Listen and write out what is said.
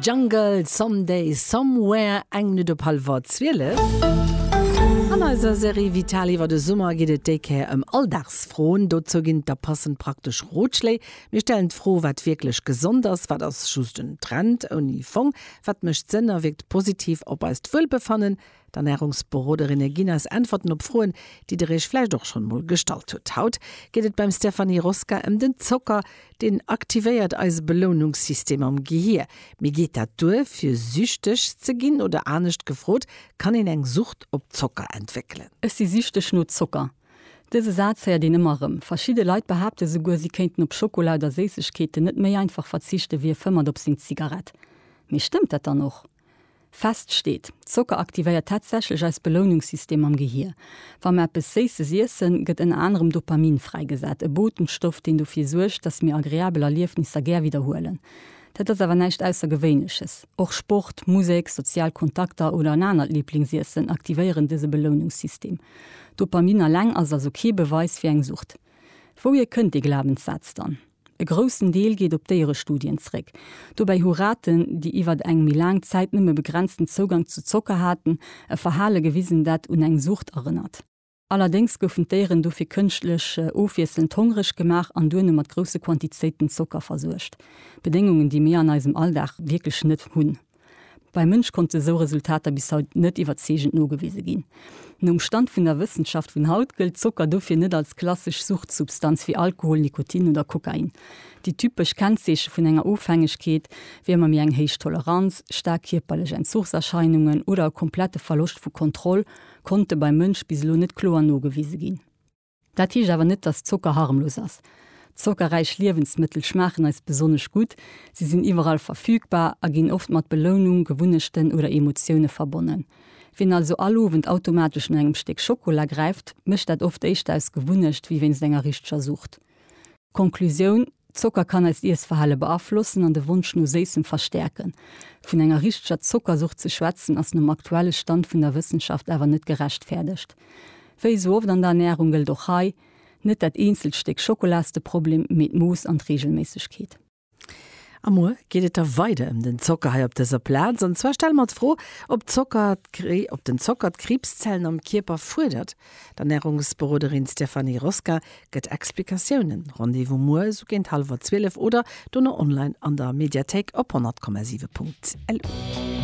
Jungle, Someday, Somewhere, eng Minutt op hallwer zwielef. An eiser Serie Vital iwwer de Summer geet et déi Kéier ëm Alldagsfroen. Dozou ginn et da passend praktesch Rotschléi. Mir stellen d'Fro, wat wierklech gesond ass, wat ass just en Trend ouni Fong, wat mécht Sënn a wierkt positiv op eist Wuelbefannen. D'Ernärungsberoderinne ginn eis Äntwerten op Froen, déi der iech vläicht och schonn emol gestallt hutt. Haut geet et beim Stéphanie Rosca ëm den Zocker. Deen aktivéiert eise Belounungssystem am Gehier. Mee geet dat duer, fir süchteg ze ginn? Oder anescht gefrot, Kann een eng Sucht op Zocker entwéckelen? Ech si süchteg no Zocker. Dëse Saz héiert een ëmmer erëm. Verschidde Leit behaapte souguer, si kéinten op Schokola oder Séissegkeeten net méi einfach verzichten, wéi e fëmmert op seng Zigarett. Mee stëmmt dat dann och? Fest steet, Zocker aktivéiert tatsächlech eist Belounungssystem am Gehier. Wa mer eppes Séisses iessen, gëtt ënner anerem Dopamin fräigesat, e Botenstoff, deen dofir suergt, dass mir agreabel Erliefnisser gär widderhuelen. Dat ass awer näischt Aussergewéinleches. Och Sport, Musek, sozial Kontakter oder en anert Liblingsiessen aktivéieren dëse Belounungssystem. Dopamin alleng ass also kee Beweis fir eng Sucht. Wouhier kënnt dee Glabenssaz dann? E groussen Deel geet op Déierestudien zréck. Dobäi hu Raten, déi iwwer eng méi laang Zäit nëmme begrenzten Zougang zu Zocker haten, e Verhale gewisen, dat un eng Sucht erënnert. Allerdéngs goufen d'Déieren dofir kënschtlech ofwiesselnd hongreg gemaach an duerno mat grousse Quantizéiten Zocker versuergt, Bedéngungen, déi mir an eisem Alldag wierklech net hunn. Beim Mënsch konnte esou Resultater bis haut net iwwerzeegend nogewise ginn. Nom Stand vun der Wëssenschaft vun haut gëllt Zocker dofir net als klassesch Suchtsubstanz wéi Alkohol, Nikotin oder Kokain. Déi typesch Kennzeeche vun enger Ofhängegkeet wier ëmmer méi eng héich Toleranz, staark kierperlech Entzuchserscheinungen oder e komplette Verloscht vu Kontroll konnte beim Mënsch bis elo net kloer nogewise ginn. Dat heescht awer net, dass Zocker harmlos ass. Zockerräich Liewensmëttel schmaachen eis besonnesch gutt, si sinn iwwerall verfügbar a ginn oft mat Belounung, Gewunnechten oder Emotioune verbonnen. Wien also all Owend automatesch no engem Stéck Schokola gräift, mécht dat oft éischter aus Gewunnecht wéi wéinst enger richteger Sucht. Konklusioun, Zocker kann eist Iessverhale beaflossen an de Wonsch no Séissem verstäerken. Vun enger richteger Zockersucht ze schwätzen ass nom aktuelle Stand vun der Wëssenschaft awer net gerechtfäerdegt. Wéi esou oft an der Ernärung gëllt och hei, Net dat eenzelt Stéck Schokola ass de Problem, mee d'Mooss an d'Reegelméissegkeet. A muer geet et da weider ëm den Zocker hei op dëser Plaz. An zwar stelle mer d'Fro, ob Zocker, ob den Zocker d'Kriibszellen am Kierper fuerdert. D'Ernärungsberoderin Stéphanie Rosca gëtt Explikatiounen. Rendez-vous muer esou géint hallwer zwielef oder dono online an der Mediathéik op 100,7.lu.